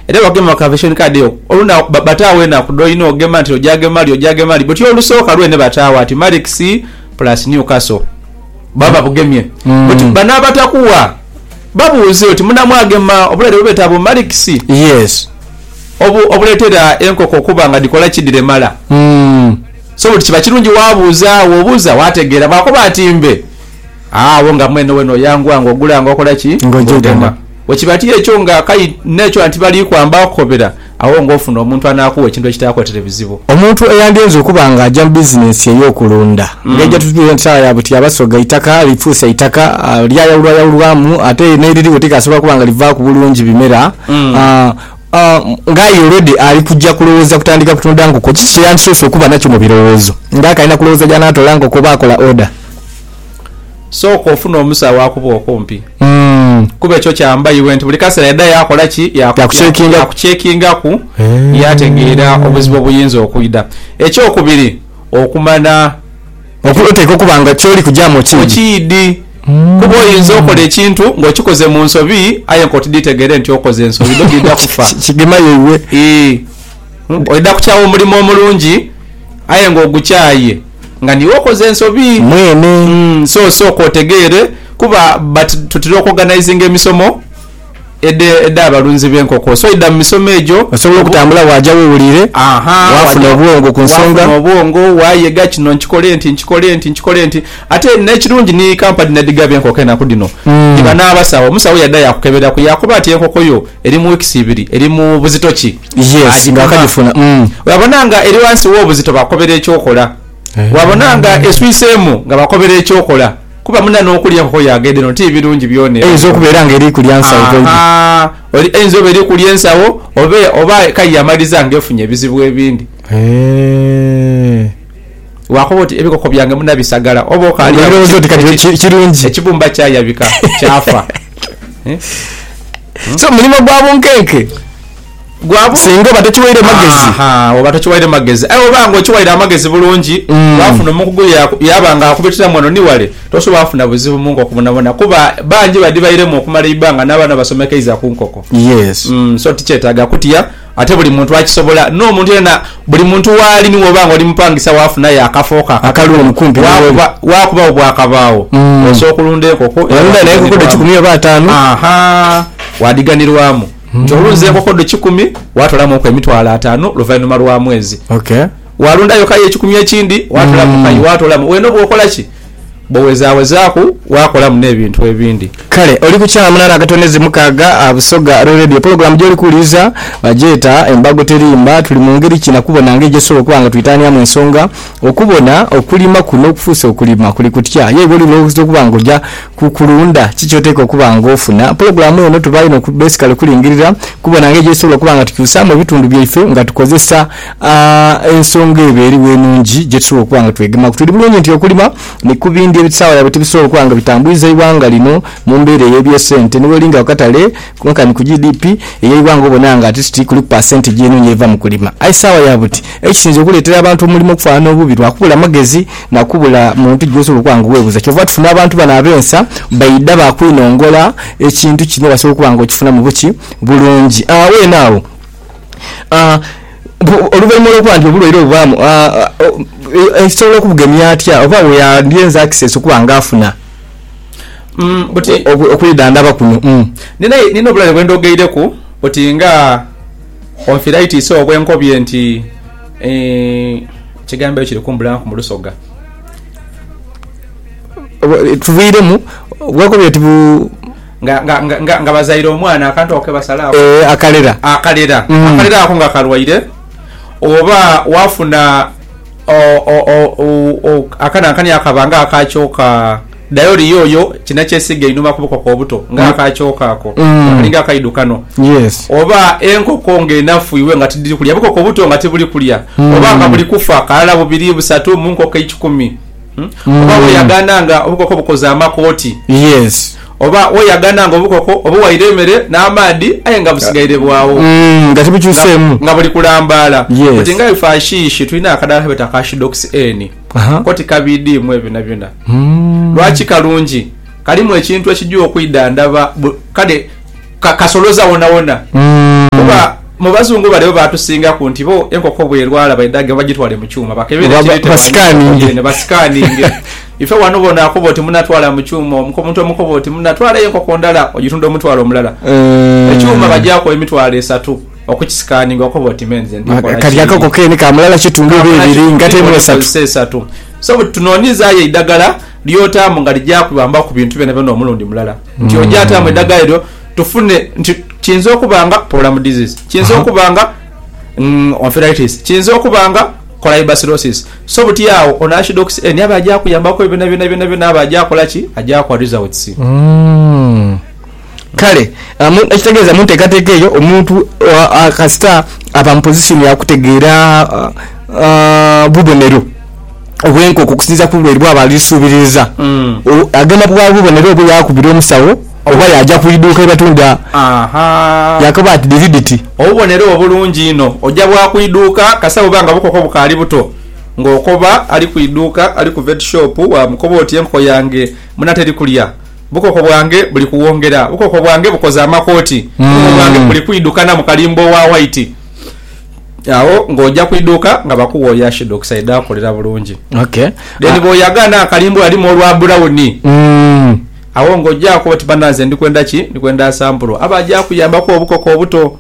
Era bagema bakaveshoni kadi eyo oluna bataawo enaku dhoyina ogema nti oja gema li oja gema li but olusoka lwene bataawo ati Marix plus Newcastle baba babugemye but bano abatakuwa babuuze oti munamwa gema obulwaire bwebeta bu Marix obu obuletera enkoko okuba nga dhikola ki dhiremala so but kiba kirungi wabuuza agho obuuza wategera bwakoba ati mbe Agho nga mwene wena oyangua nga ogula nga okola ki? Nga ojegema. Bwekiba ti ekyo nga akai n'ekyo anti bali kwamba kukobera, agho nga ofuna omuntu anaakugha ekintu ekitaakuletere bizibu. Omuntu eyandyenze okuba nga aja mu bizinensi ey'okulunda ng'ejo tutuule nti saagha ya butyaba so ga itaka lifuuse itaka lyayawulwayawulwamu ate n'eririgho tikasobola kuba nga livaaku bulungi bimera. Ng'aye olwedi ali kuja kulowooza kutandika kutunda nkoko, kiki kye yandisoose okuba nakyo mu birowoozo? Ng'akalina kulowooza gy'anaatoola nkoko oba akola oda? Sooka ofune omusawo akuba okumpi. Kuba ekyo kyamba iwe nti buli kaseera aidha yaakola ki? Yaakucekingaku yaategeera obuzibu obuyinza okwidha. Ekyokubiri, okumanya. Oteekwa okuba nga ky'oli kugyamu okiidhi. Okiidhi. Kuba oinza okola ekintu ng'okikoze mu nsobi aye nk'otidhitegere nti okoze nsobi dho dhidha kufa. Kigema yaibwe. Ii, Oidha kukyawa omulimo omulungi aye ng'ogukyaye nga niiwe okoze ensobi. Mwene. So, sooka otegeere kuba but tutera okwoganaizinga emisomo. Edho edh'abalunzi b'enkoko. So idha mu misomo egyo. Osobola okutambula waaja we wuliire, waafuna obwongo ku nsonga. Waafuna obwongo, waayega kino nkikole nti, nkikole nti, nkikole nti. Ate n'ekirungi ni kampani n'edhigaba enkoko enaku dhino, dhiba n'abasawo. Omusawo yaidha yaakukeberaku yaakoba ati enkoko yo eri mu wiikisi ibiri, eri mu buzito ki, agipima. Olabona nga eri ghansi w'obuzito bakukobera eky'okola. Bwabona nga eswiseemu nga bakobera eky'okola, kuba muna n'okulya enkoko yaagenda eno ti birungi byona ebyo. Einza okubeera nga eri kulya nsawo toidi. Ahaa, oli, einza oba eri kulya ensawo, oba, oba aye yamaliza nga efunye ebizibu ebindi. Eeh. Waakoba oti, Ebikoko byange muna bisagala, oba okaali agho N'olowooza oti kati ki, kirungi. ekibumba kyayabika, kyafa. So, mulimo gwa bunkenke. gwabo. Singa oba tokiwaire magezi. Aha, oba tokiwaire magezi. Aye bwoba nga okiwaire amagezi bulungi, waafuna omukugu ye yaaba nga akubitiramu ghano ni wale, tosoboola kufuna buzibu mu nkoko bwonabwona kuba bangi badhibairemu okumala eibbanga n'abaana basomekeiza ku nkoko. Yes. So tikyetaaga kutya ate buli muntu akisobola. N'omuntu yena, buli muntu waali ni bwoba nga oli mupangisa waafunayo akafo ko akatono waakuba, waakubagho bwakabaagho osobola okulunda enkoko. Walunda n'enkoko dhe kikumi oba ataanu. Aha, waadhighanirwamu. nti owunze enkoko dho kikumi, waatolamuku emitwalo ataanu luvainhuma lwa mwezi. Waalundayo kayi ekikumi ekindi, waatolamu kayi, hmm. waatolamu. Wena oba okola ki? Bwowezawezaaku, waakolamu n'ebintu ebindi. Kale oli ku Kyala Munana Akatonezi Mukaaga, ah, Busoga Royal Radio. Pulogulaamu gy'oli kuwuliriza bagyeta Embago Terimba. Tuli mu ngeri ki na kubona ngeri gyetusobola okuba nga twitaaniamu ensonga? Okubona okulima kuno okufuuse okulima kuli kutya? Ye iwe oli lw'oyinza okuba nga oja ku kulunda, ki ky'oteekwa okuba ng'ofuna. Pulogulaamu eno tuba inho besikale kulingirira kubona ngeri gyetusobola okuba nga tukyusaamu ebitundu byaife nga tukozesa ensonga ebo eriwo enungi gyetusobola okuba nga twegemaku. Tuli bulungi nti okulima ni ku bindi ebitusaawa yaabwe tibisobola okuba nga bitambwiza eighanga lino mu mbeera ey'ebyesente. Ni bwolinga ku katale Konka ni ku GDP ey'eighanga obona nga ati ti kuliku pasentegi enho y'eva mu kulima. Aye sawa ya buti, ekisinze okuleetera abantu omulimo okufanhanha obubi lwa kubula magezi na kubula muntu gwosobola okuba nga weebuza. Kyova tufuna abantu bano ab'ensa baidha baakwinongola ekintu kino osobola okuba nga okifunamu buki? Bulungi. Weene agho, oluvainhuma olw'okuba nti obulwaire obwo bubaamu, osobola okubugemya atya oba bwe yandyenza akisesi okuba nga afuna? okwidhandhaba kuno. Nina obulwaire bwe ndhogeireku oti nga onfiraitisi obwe nkobye nti ekigambo ekyo kiri kumbuliraku mu lusoga. Tuviiremu, bwe nkobye oti bu. Nga bazaire omwana akantu ako ke basalaaku. Ee, akalera. Akalera ako nga kalwaire oba waafuna. Akanankanhi ako kaba nga aka kyoka. Dhayo ori yoyo kina kyesiiga einhuma ku bukoko obuto nga aka kyoka ako. Akalinga akaidu kano. Oba enkoko nga enafu iwe nga tidiri kulya, bukoko buto nga tibuli kulya. Oba nga buli kufa kalala, bubiri, busatu mu nkoko eikumi. Oba bweyagaana nga obukoko bukoze amakooti. Oba weyaganha nga obukoko obuwaire emere n'amaadhi aye nga busigaire bwawo, nga buli kulambaala, koti nga ife Ashishi tulina akadaala kebeeta aka Shidoksi Eni, koti kabiidiimu ebyo byonabyona. Lwaki kalungi? Kalimu ekintu ekija okwidhandhaba, kale kasoloza wonawona. Kuba mu Bazungu bale bo baatusingaku nti bo enkoko bw'erwala baidhage bagitwale mu kyuma bakebere ekiriitemu, basikaaninge. Ife wano bona akoba oti munatwala mu kyuma omu ko muntu omukoba oti munatwala enkoko ndala ogitunda omutwalo omulala ekyuma bagyaku emitwalo esatu okukisikaninga okoba oti me nze ndi kola kati akako kene ka mulala kitundu oba ebiri nga temu esatu esatu so bwe tunonyezayo eidagala lyotamu nga lijakubamba ku bintu byona byona omulundi mulala nti ojatamu edagala eryo tufune nti kiyinza okuba nga problem disease kiyinza okuba nga onfiraitis kiyinza okuba nga kolaibasilosisi. So buti agho ono Archdox eni abe agyakuyambaku ebyo byona byona byona byona abe agyakola ki? Agyakuwa results. Kale ekitegeeza mu nteekateeka eyo omuntu kasita aba mu position ya kutegeera bubonero obw'enkoko okusinziira ku bulwaire bwaba ali suubiriza, agenda bughala bubonero obwo yaakubira omusawo. Oba yaaja ku idhuuka ye batunda yaakoba ati, Dhiri dhiti? Obubonero obulungi inho. Oja bwa ku idhuuka kasa buba nga bukoko bukaali buto, ng'okoba ali ku idhuuka, ali ku vet shop, waamukoba oti, Enkoko yange muna teri kulya. Bukoko bwange buli kuwongera. Bukoko bwange bukoze amakooti. Bukoko bwange buli kwidhukana mu kalimba owa waiti. Agho ng'oja ku idhuuka nga bakuwa oyo Ashidox aidha kukolera bulungi. Then bw'oyaga n'akalimba alimu olwa bulawuni. Agho ng'ojaaku oti, Banansi, ndi kwenda ki? Ndi kwenda asampuro aba aja kuyambaku obukoko obuto.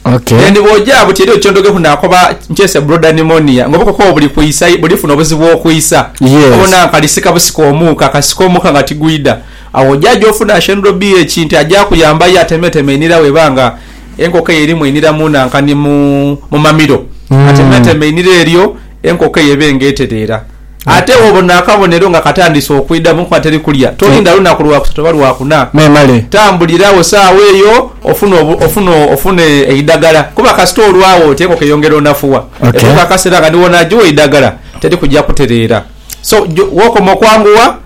Ok. Then bw'oja buti eriyo ky'ondogheku naakoba nkyese broda nimonia ng'obukoko obwo buli kwisa, buli funa obuzibu okwisa. Yes. Obona nkalisika busika omuuka, kasika omuuka nga tigwidha. Agho oja gy'ofuna Ashendro BH nti aja kuyamba ye atemeeteme einhira bw'eba nga enkoko eyo erimu einhira mu nanka ni mu mamiro. Atemeeteme einhira eryo enkoko eyo ebe ng'etereera. Ate bw'obona akabonero nga katandise okwidha mu nkomerero teri kulya, tolinda lunaku lwa kusatu oba lwa kuna. Memale. Tambulira agho saagho eyo ofune ofune eidagala. Kuba kasita olwagho oti enkoko eyongera onafuwa, etuuka akaseera nga ni w'onaagigha eidagala teri kugya kutereera. So, w'okoma okwangugha.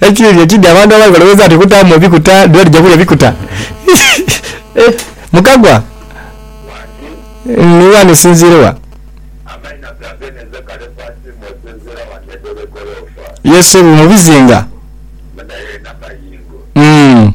Ekibi ekidi abantu abali balowooza nti okutaamu ebikuta dula dija kulya bikuta. Mukagwa ni wani osinziire wa? Ye subi mu bizinga. Umm.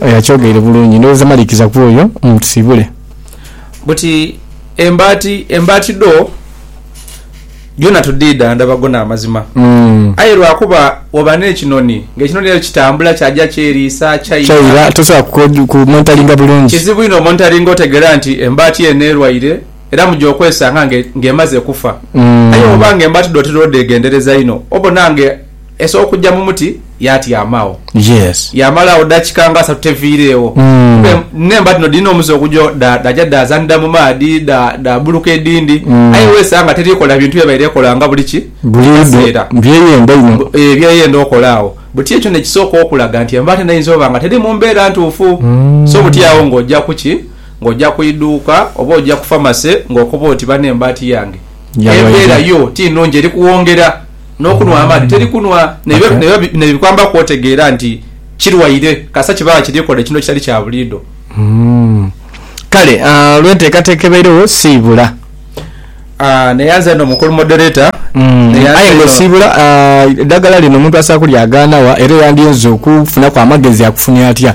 Oyo akyogeire bulungi. Ndhowooza malikiza ku oyo. Mutusiibule. Buti embaati, embaati dho dhona tudhiidha ndhaba go n'amazima. Aye lwa kuba waba n'ekinoni, ng'ekinoni ekyo kitambula kyaja kyeriisa, kyaira. Kyaira, tosobola kumonitaringa bulungi. Kizibu inho omonitaringa otegeera nti embaati eno erwaire era mu gy'okwesanga ng'emaze kufa. Aye bw'oba ng'embaati dho otera odhegendereza inho, obona nga. Esooka kugya mu muti yaatyamagho. Yaamala agho daakika nga asatu teviireegho. Aye nh'emba dhino dhiri n'omuze okugya dhaaja dhaazanhira mu maadhi, dhaabbuluka edhindi. Aye weesanga teri kola bintu bye yabaire ekola nga buli ki? Buli kaseera. Byeyenda inho. Ee, byeyenda okola agho. Buti ekyo n'ekisooka okulaga nti embaata nayo eyinza oba nga teri mu mbeera ntuufu. So buti agho ng'oja ku ki? Ng'oja ku idhuuka oba oja ku famase ng'okoba oti, Bano embaati yange embeera yo ti nnhungi eri kuwongera. N'okunhwa amaadhi teri kunhwa. N'ebyo bikwambaku otegeera nti kirwaire kasita kiba nga kiri kola ekintu ekitali kya buliidho. Kale olw'enteekateeka ebairegho siibula. Neyanza inho mukulu Moderator. Aye nga osiibula, eidagala lino omuntu asobola okulyagaana wa era eyandiyinza okufunaku amagezi akufunhe atya?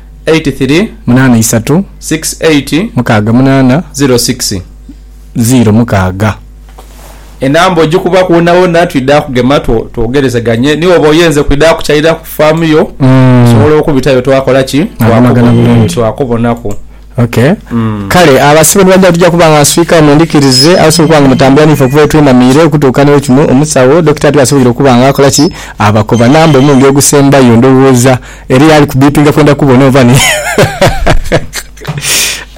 eight three munaana isatu six eight mukaaga munaana zero six zero mukaaga. Enamba ojikuba kwonawona twidha kugema twogerezeganye ni woba oyenze kwidha kukyalira ku faamu yo osobola okubitayo twakola ki twakubonaku. Okay kale abasibe ni bajja tugya kuba nga nswika mwendhikirize abasobola okuba nga mutambula niife okuva wetwenamiire okutuuka ni wekino omusawo, Dokita, tibasoboire okuba nga akola ki? abakoba. Namba omundi ogusembayo ndhowooza. Eriyo ali ku beepinga kwenda kubona oba ni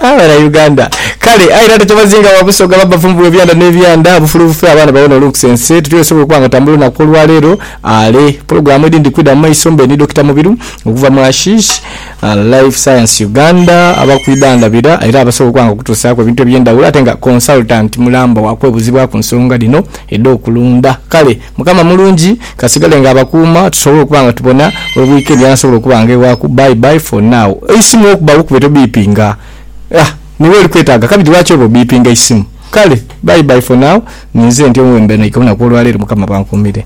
Aah bana Uganda. Kale aye era tetubazinga wa Busoga ba bavumbu be byanda ne byanda bufulu bufe abaana bawone olunkusa ensi etyo esobola okuba nga etambula olunaku olwa leero ale pulogulamu edindi kwidha mu maiso mbe ni Dokita Mubiru okuva mu Ashish Life Science Uganda abakwidha ndhabira era abasobola okuba nga okutusaku ebintu ebye ndhawulo ate nga consultant mulamba wa kwebuzibwaku nsonga dhino edho kulunda kale Mukama mulungi, kasigale nga abakuuma tusobole okuba nga tubona obwika ebya nsobola okuba nga ewaku bye bye for now eisimu okuba wokube tobipinga ah niwe oli kwetaga kabiri lwaki oba obipinga eisimu kale bye bye for now ninze ntyo wembenaika olunaku olwalero mukama bankumire.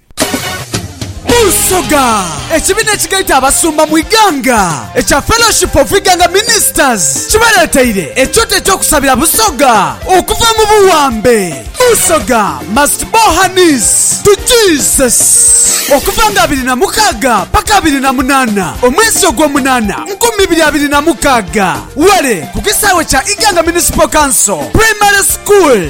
Busoga. Ekibiina ekigaita abasumba mu Iganga ekya Fellowship of Iganga Ministers kibareteire ekyoto ekyokusabira Busoga okuva mu buwambe. Busoga must bow her knees to Jesus. Okuva nga abiri na mukaaga paka abiri na munaana omwezi ogwomunaana nkumi ibiri abiri na mukaaga, ware ku kisaawe kya Iganga Municipal Council Primary School.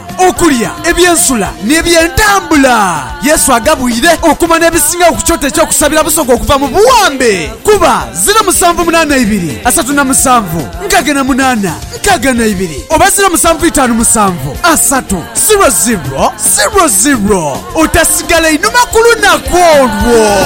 Okulya, eby'ensula, n'eby'entambula. Yesu agabwire okumanha ebisingagho ku kyoto eky'okusabira Busoga okuva mu buwambe. Kuba, ziro musanvu munaana ibiri, asatu na musanvu, nkaaga na munaana, nkaaga na ibiri, oba ziro musanvu itaanu musanvu, asatu, ziro ziro, ziro ziro. Otasigala inhuma ku lunaku olwo.